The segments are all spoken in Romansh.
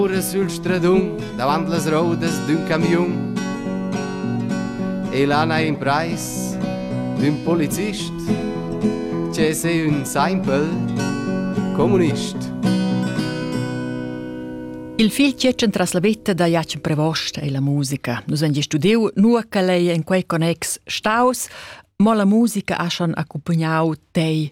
Curra sül stradun davant las roudas d'ün camiun. E là n'ha imprais d'ün polizist che es ün simpel comunist. Il fil tschetschen tras la vetta da Jacen Prevost e la musica. Nus han studiu nua che lei en quei connex staus, mo la musica ha schon accompagnau tei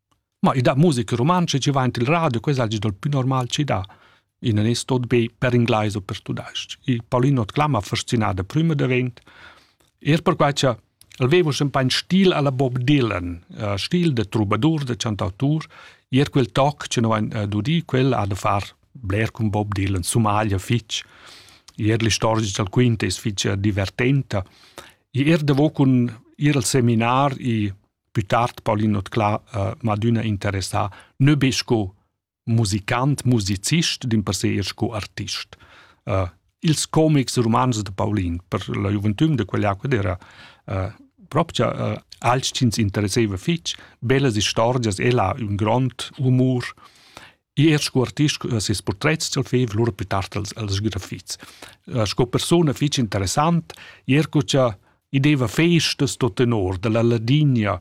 Ma i dat musica rumantscha chi vain til radio, quella es dal pü normal chi dà. I nun es tot be per inglais o per tudais-ch. Il Paulino Tclama fascinà da prüma davent, eir perquai cha el veva sempre un stil alla Bob Dylan, uh, stil da trubadur, da chantautur, eir quel toc che no vain uh, dudi, quel ha da far bler cun Bob Dylan, sumaglia fich. Eir l'istorgia dal quint es fich uh, divertenta. I eir davo cun ir al seminar i Più tard Paulin Otclà uh, m'ha adüna interessà nö be sco musicant, musicist, din per se eir sco artist. Uh, ils comics e romans de Paulin per la gioventüm de quell'epoca ed era uh, proprio uh, als ci interesseva fitch, bellas istorgias, ella un grond humor Er sco artist ha ses portrets dal fev lura pli tard els, els grafits. Eh, sco persona fitg interessant, er co cha i deva festas tot tenor dalla Ladinia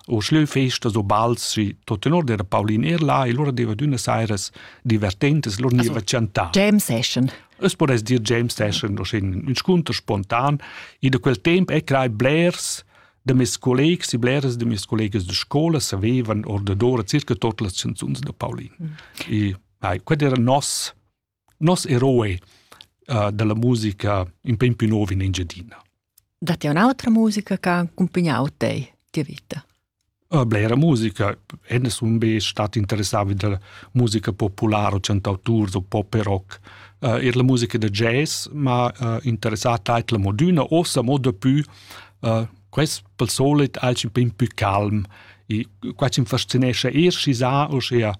o schleu festas o bals si tot tenor era Paulin er là e lura deva d'una sairas divertentes, lura niva chantar. James Session. Es podess dir James Session, no schin un scontr spontan, e da quel temp è crai blers da mes collegs e bleras da mes collegas de scola savevan ordadora circa tot las canzuns de Paulin. Mm. E ai, qued era nos nos eroe uh, della musica in pem più nuovo in Engiadina. Datti un'altra musica che ha accompagnato te, tua vita? Uh, blera musica, enne sun be stat interessati della musica popolare o cantautours o pop e rock. Uh, er la musica da jazz, ma uh, interessata è la moduna, ossa mo dapù Uh, quest pel solit alch ün pin pü calm e qua chi'm fascinescha eir schi sa uschea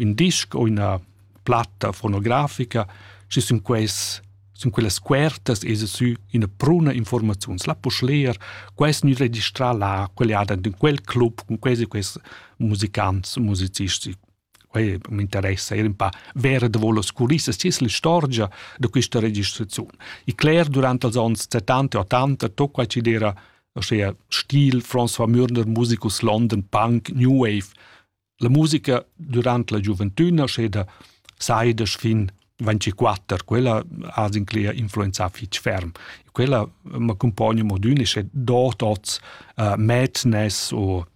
ün disc o üna platta fonografica, schi sun quels sun quellas scuertas esa sü üna bruna informaziuns. La posch leer, quest gnü registrà là, quel e ha dad ün quel club cun quels e quels musicants e musicisti. Quei m'interessa era un pa ver davò las culissas, chi es l'istorgia da quista registraziun. I cler durant els ons 70 e 80 tot quai chi'd era uschea stil François Mürner, musicus London, punk, new wave. La musica durant la giuventüna, uschè da saidesch fin 24, quella ha zincler influenzà fich ferm. Quella m'accumpogna modün e sche dot oz uh, madness o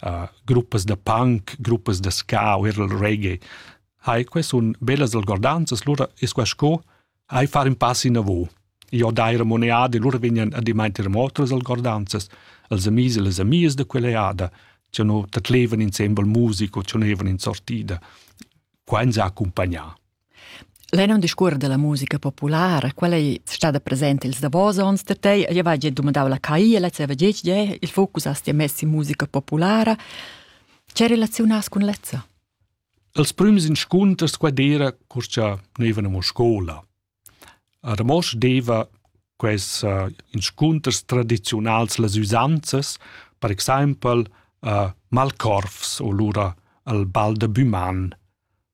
uh, gruppas da punk, gruppas da ska o er il reggae. Hai, que sun bellas algordanzas, lura es qua sco hai far in pass inavò. Io dai remoneade, lura vegnan a dimainter mo otras algordanzas, els amis e les amias da quella eada, che no tatlevan insembel musico, che no evan in sortida. Qua ins ha accompagnà. Lei non discuor della musica populara, quella ei stada presenta ils davos onns da tei, io vai gia dumandau la CAI e la zeva gec, je, il focus has ti mess in musica populara. Ce relaziunas cun lezza? Als prüms inscunters qua d'era, cur cha noivan amo scola. A Ramosch deva quels uh, inscunters tradiziunals las üsanzas, per exaimpel uh, Malkorfs o lura al bal de Buman,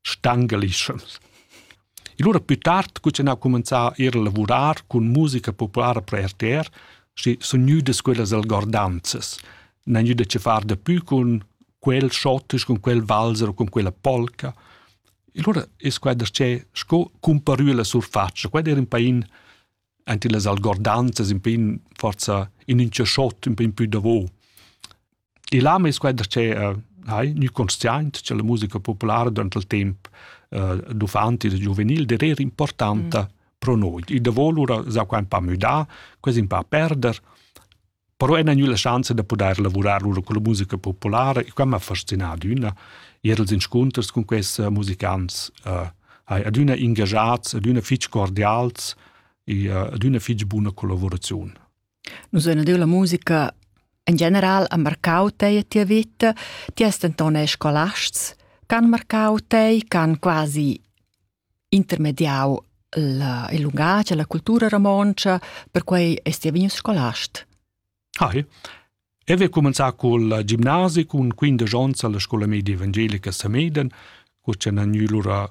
stangalischans. E lura più tard cuzzanau cumenzà ir a lavurar cun musica populara per RTR, schi sun gnüdas quellas algordanzas. N'han gnüda che far dapü cun quel schottisch, cun quel valzer o cun quella polca. E lura es quai darchè sco cumparü la surfatscha. Quai era in pain ante las algordanzas, in pain forza in ün tschachot, in pain pü davo. E là mes quai da che hai gnü consciaint cha la musica populara durant il temp uh, d'uffanti e da giuvenil der era importanta mm. pro noi. I davo lura s'ha quai un pa müdà, quasi un pa perder, però ena gnü la schanza da pudair lavurar lura con la musica populara e quai m'ha fascinado üna, ir als inscunters con questi musicants, uh, hai adüna ingagiats, adüna fich cordials e uh, adüna fich buna collaboraziun. Nus ein adüna la musica in general ha marcau tei e tia vita. Ti has denton eir scolasts ch'han marcau tei, ch'han quasi intermediau il il lungatg e la cultura romontscha, perquei eis ti vegnius scolast. Hai. Eu he cumenzà cul gimnasi cun quindesch ons alla scoula media evangelica a Sameden, cur cha n'han gnü lura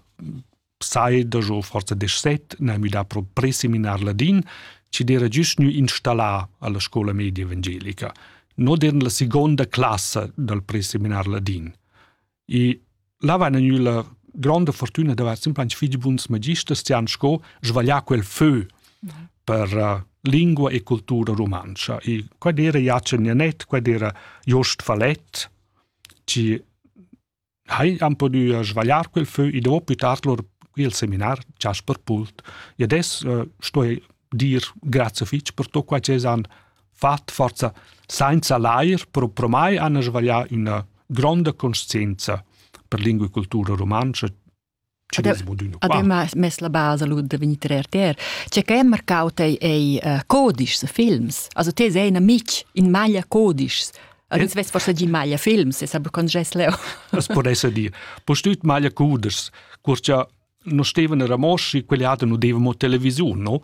sai dajo forza desset n'ha müdà pro preseminar ladin, ci d'era giust gnü installar alla scola media evangelica, not in la seconda classa dal preseminar ladin. E là va gnü la gronda fortuna d'avair simplesmente figli buns magisters ci han sco svaglià quel feu per uh, lingua e cultura romancha. E quad era Jacen Janet, quad era Jost Fallet, ci hai han pudü svagliar quel fö e dopo pü tard lur il seminar Jasper Pult. E adesso uh, sto dir grazie fitch per tutto quai che han fatto forza senza l'air, però pro mai hanno sbagliato una grande coscienza per lingua e cultura romanica Ademma mess la basa lud da vegnir trer ter. Tge che è marcau tei ei uh, codischs, films. Also te sei in amic in maglia codischs. Also ins vess forse gi maglia films, se sabe con gess leo. Das podesse dir. Postüt maglia codischs. Curcia no steven a Ramoschi, quelle hatte no devamo television, no?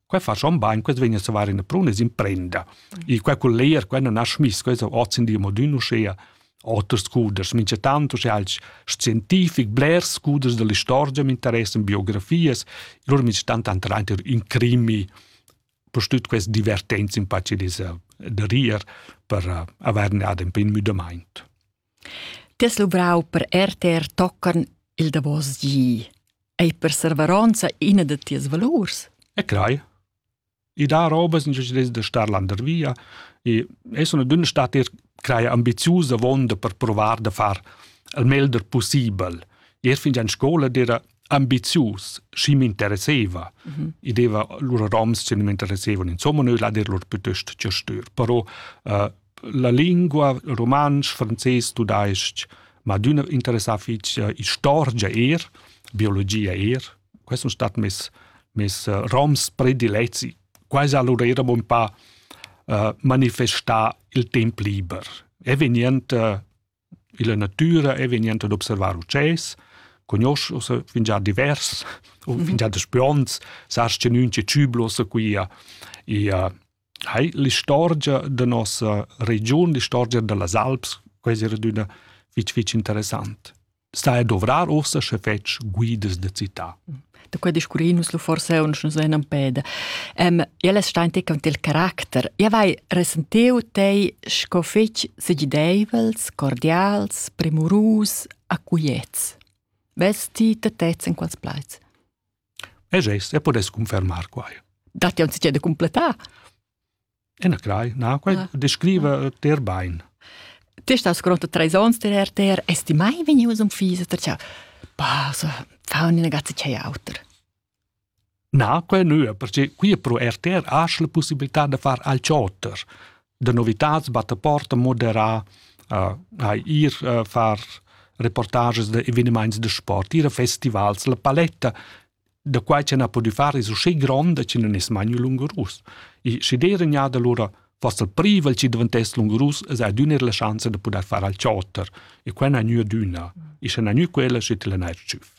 Quai fa schon bain, quest vegn a savar ina pruna e imprenda. E quai col leer, quai non ha schmiss, quai è oz in di modun uschea oters scuders, mincha tanto sche als scientific blers scuders dell'istorgia mi interessan biografias, lur mi stanno tanto reint in crimi per tut queste divertenze in pace disa da rir per uh, averne ad un pin müdamaint. Ti has luvrau per rtr tocan il davos gi. Ei per serveronza ina da tias valurs? E crei. I dà robas da star landervia e es una dünna stat er creia ambiziusa vonda per provar da far il meglder possibel. Er fin già in scola era ambizius, schi m'interesseva. Mm -hmm. I deva lura roms che mi interessevano, insomma, noi la der lur piuttosto cerstür. Però uh, la lingua rumantsch, frances, tudais-ch, ma adüna interessà fich eh, istorgia eir, biologia eir. Quai sun stat mes, mes eh, roms predilezi. Quai allura eira un pa eh, manifestà il temp liber. E vegnend eh, Illa natüra e vegnent ad observar utschès, cugnosch uossa fingià divers o fingià daspü ons, sast che nün che tschübla uossa quia ia hai l'istorgia da nossa regiun, l'istorgia da las Alps, quais eira adüna fich fich interessant. Stai a dovrar uossa sche fetsch guidas da cità. da quei discurrir nus lu forse uns nus venan peda. Ähm, ja les stein te con il caracter. Ja vai resentiu tei sco fetg segideivels, cordials, premurus, acuiets. Vesti te tez in quals plaiz? E gest, e podes confermar quai. Dat ja uns de completar. Enacrai, na, quai ah. descriva ter bain. Te stas gronda treis ons der RTR, esti mai venius un fisa, ter ciao. Pasa, fa una ragazza c'è auter. Na, quai nu, perché qui pro RTR has la possibilità de far al ciotter. De novitats batte porta moderà, uh, a ir uh, far reportages de evenements de sport, ir a festivals, la paletta da quai ch'en ha pudü far es usché gronda chi nun es mai gnü lungurus. E schi d'eira gnada lura foss il privel chi daventess lungurus es adüna eir la schanza da pudair far al chotter e quai n'ha gnü adüna. E sche n'ha gnü quella, schi til n'ha eir tschüff.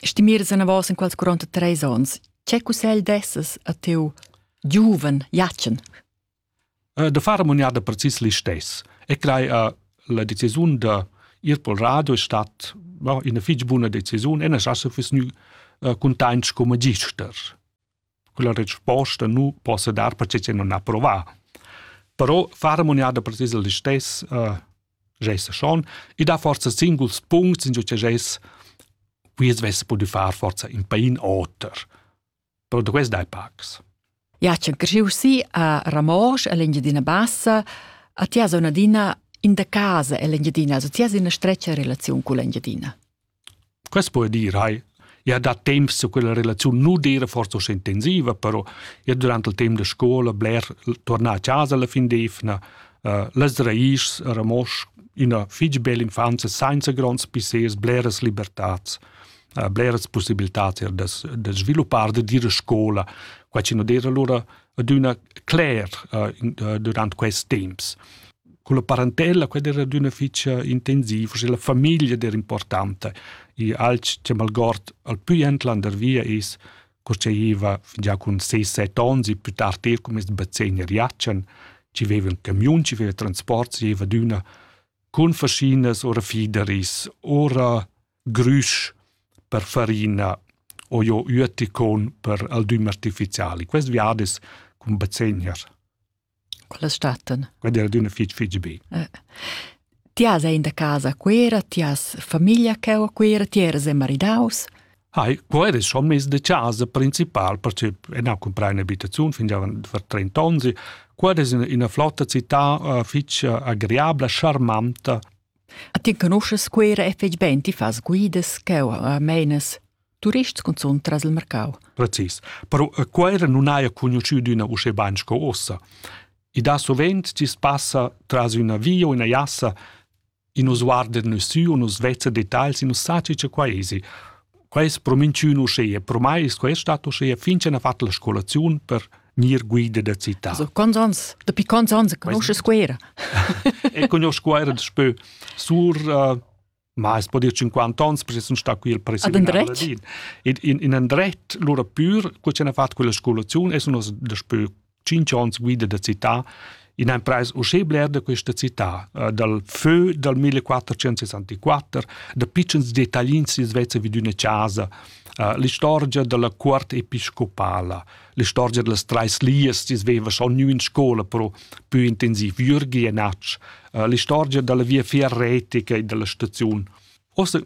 Stimiras anavos in quels 43 ons, che cussegl dessas a teu giuven Jatschen? da far ammuniada precis listess e crei a la decisiun da ir pel radio è stat no, ina fich buna decisiun e nas asa füss gnü cuntaints come magister. Quella resposta nu possa dar perche che non ha provà. Però far ammuniada precis listess uh, gesa schon e dà forza singuls puncts in giò che ges quiz vess pudü far forza in pain oter. però duess dai pacs. Ja c'han cresciu si a Ramosch all'Engiadina Bassa, a tia zona dina in da casa all'Engiadina, also tia ina streccia relaziun con l'Engiadina. Quest può dire, hai, ja da temps su quella relaziun nu dire forse so intensiva, però ja durante il tempo de scuola bler tornar a casa la fin d'evna, uh, las raiz a Ramosch, ina fitg bella infanzia senza gronds pissers, bleras libertats. bleras possibilitads er da, da sviluppar, da dire scola. Qua ci non dire allora aduna cler uh, durant quest temps. Con la parentella, quella era aduna ficia intensiva, cioè la famiglia era importante. E al che malgord al più entlander via is cosceiva già con 6-7 anni, più tardi er come bazzegner Iacen, ci aveva un camion, ci aveva transport, ci aveva d'una con fascinas ora fideris, ora grüsch per farina o jo üeticon per aldüm artificiali. Quest viad es cun bazegner. Quella statten. Quella era d'una fitg fitg be. Eh. Ti has in da casa quera, ti has famiglia che o quera, ti eras maridaus. Hai, quo era schon mes de casa principal, perché en ho comprai un'abitazione fin già per 30 anni. Quo era ina flotta città uh, fitch agreabla, charmanta, Ti conoschas Cuera e fetg bein, ti fas guidas cheu a meinas turists cunzun tras il mercau. Precis. Però a Cuera non haja conosciu d'üna uschè bain sco ossa. E da sovent ti passa tras üna via o üna jassa e nos guarder nus sü o nos vezza detagls e nus saci cha quai esi. Quei es pro minchün uschea, pro mai es quest stat uschea fin ch'han fatg la scolaziun per gnir guida da città. Also, quants ans, dapi quants ans conosces Scuera? e conosco Scuera daspö sur uh, ma es po dir 50 ans, perché sun sta qui il presidente. In, in, in andret, lura pur, cu c'han fatto quella scolazione, e sun os daspö cinc onns guida da città in empreis uschè bler da questa città, uh, dal fö dal 1464, da pitschens dettaglins si Svezia vid üna casa, uh, l'istorgia dalla cuort episcopala, l'istorgia dallas trais lias si sveva schon gnü in scola pro più intensiv Jürgi e Natsch, uh, l'istorgia dalla via ferretica e dalla staziun. Ossa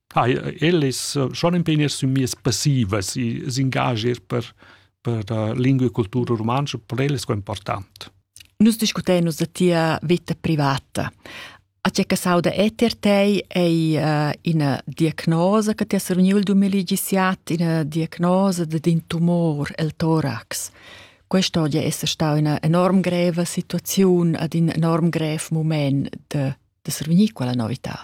Hai, ellis schon in pegn sün mias passivas i s'ingagier per per la lingua e cultura rumantscha per ellas qua important. Nus discutein nus a tia vita privata. A tge che sauda eter tei ei uh, ina diagnosa che ti has reuniu il 2017, ina diagnosa d'in tumor, il torax. Questa oggi è stata una enorm greva situazione ad un enorm grev moment de, de survenir quella novità.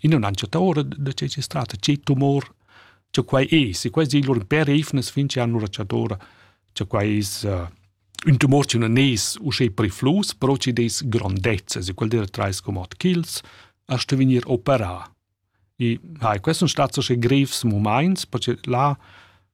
in non han chatta ora da che si strata ci tumor che quai è se quai di lur per efnes fin che hanno racciatora che quai is un tumor ci non es u che priflus però ci des grandezza se quel der trais comod kills a sto venir opera e hai questo stato che grevs moments perché là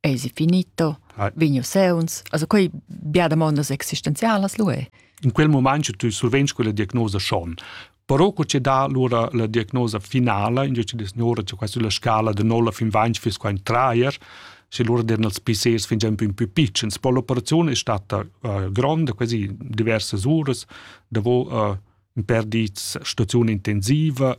Eisi finito, ah. vegnu seuns. Also quei bia damondas existenzialas lu è. In quel moment tu survegns quella diagnosa schon. Però co ci dà allora la diagnosa finala, in dice dis ora c'è quasi la scala de 0 fin 20 fis qua in traer, se loro derano els PCs fin già un più piccins. Poi l'operazione è stata uh, grande, quasi diverse ore, davo uh, in per di stazione intensiva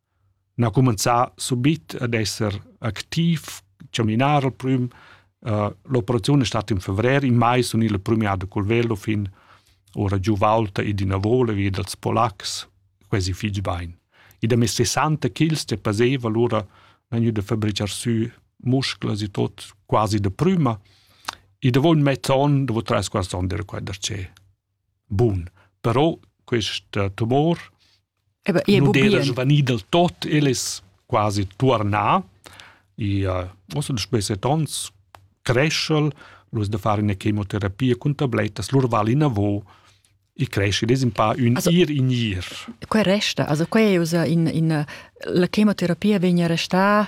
n'ha cumenzà subit ad esser activ, chaminar al prüm. Uh, l'operaziun è stata in fevrer, in mai sun il premiato col velo fin ora giù Valta e d'ina vola via dals polacs, quasi fitg bain. I da mes 60 kg che paseva allora vegnu da fabricar sü musclas e tot quasi da prüma. E da voul mezz'on, da voul tres quars on era quai da ce. Bun, però questa tumor nu d'era svanì del tot, el es quasi tuornà. I ha uossa da spesset ons creschel, lur da far üna chemoterapia cun tablettas, lur val inavo, i cresce, es in pa ün also, ir in ir. Quai resta, also quai è usa in, in, la chemoterapia vegna restà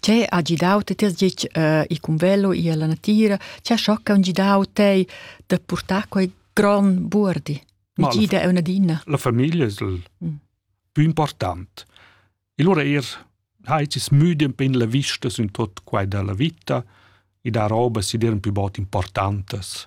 Che ha gidau ti tiers gitg uh, il cumvello e la natira? Che ha schocca un gidau te da portar quei gran buordi? Mi gida è una dina. La famiglia è il mm. più importante. E allora er hai ci smüdi un pin la vista su in tot quai della vita e da roba si dir un più bot importantes.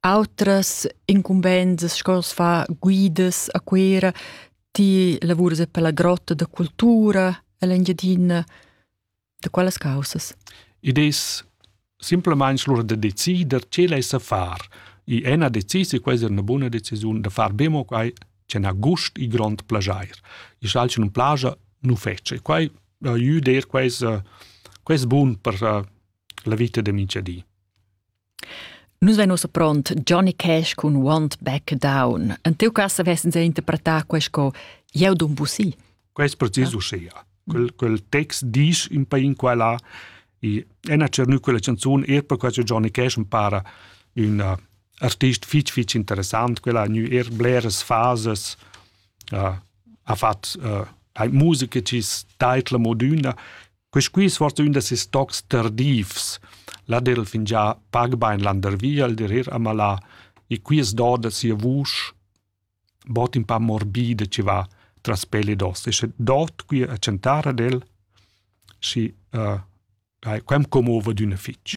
Autras incumbensas sco as fa guidas a Cuera, ti lavuras e per la grotta da cultura en l'Engiadina, da quelles causas? Id es simplamaing lura da decider che l'ais da far. I è na decis e questa è una buna decisiun da far be mo quai che n'ha gust e grond plajair. I schal che nun plaja nu fece. Quai aiuda eir quais, quais bun per la vita da minchadi. Nus vein ussa pront Johnny Cash cun Want Back Down. En tiu cass vessens interpretà quei sco Jeu dun busi. Quei è precis ah. uschia. Quel, quel text dice in pa in quella e ena cernu quella canzun er per quasi Johnny Cash mi para un uh, artist fitch fitch interessant, quella ha nu er bleres fases, uh, ha fat uh, musica cis taitla moduna Quisqui svart ün da ses tocs tardivs. La der il fingià pag bain landervi al der ir a malà e qui es doda sia vusch bod ün pa morbida chi va tras pel ed os. E sche dot qui a chantar ad el, schi uh, quem commova d'üna fich.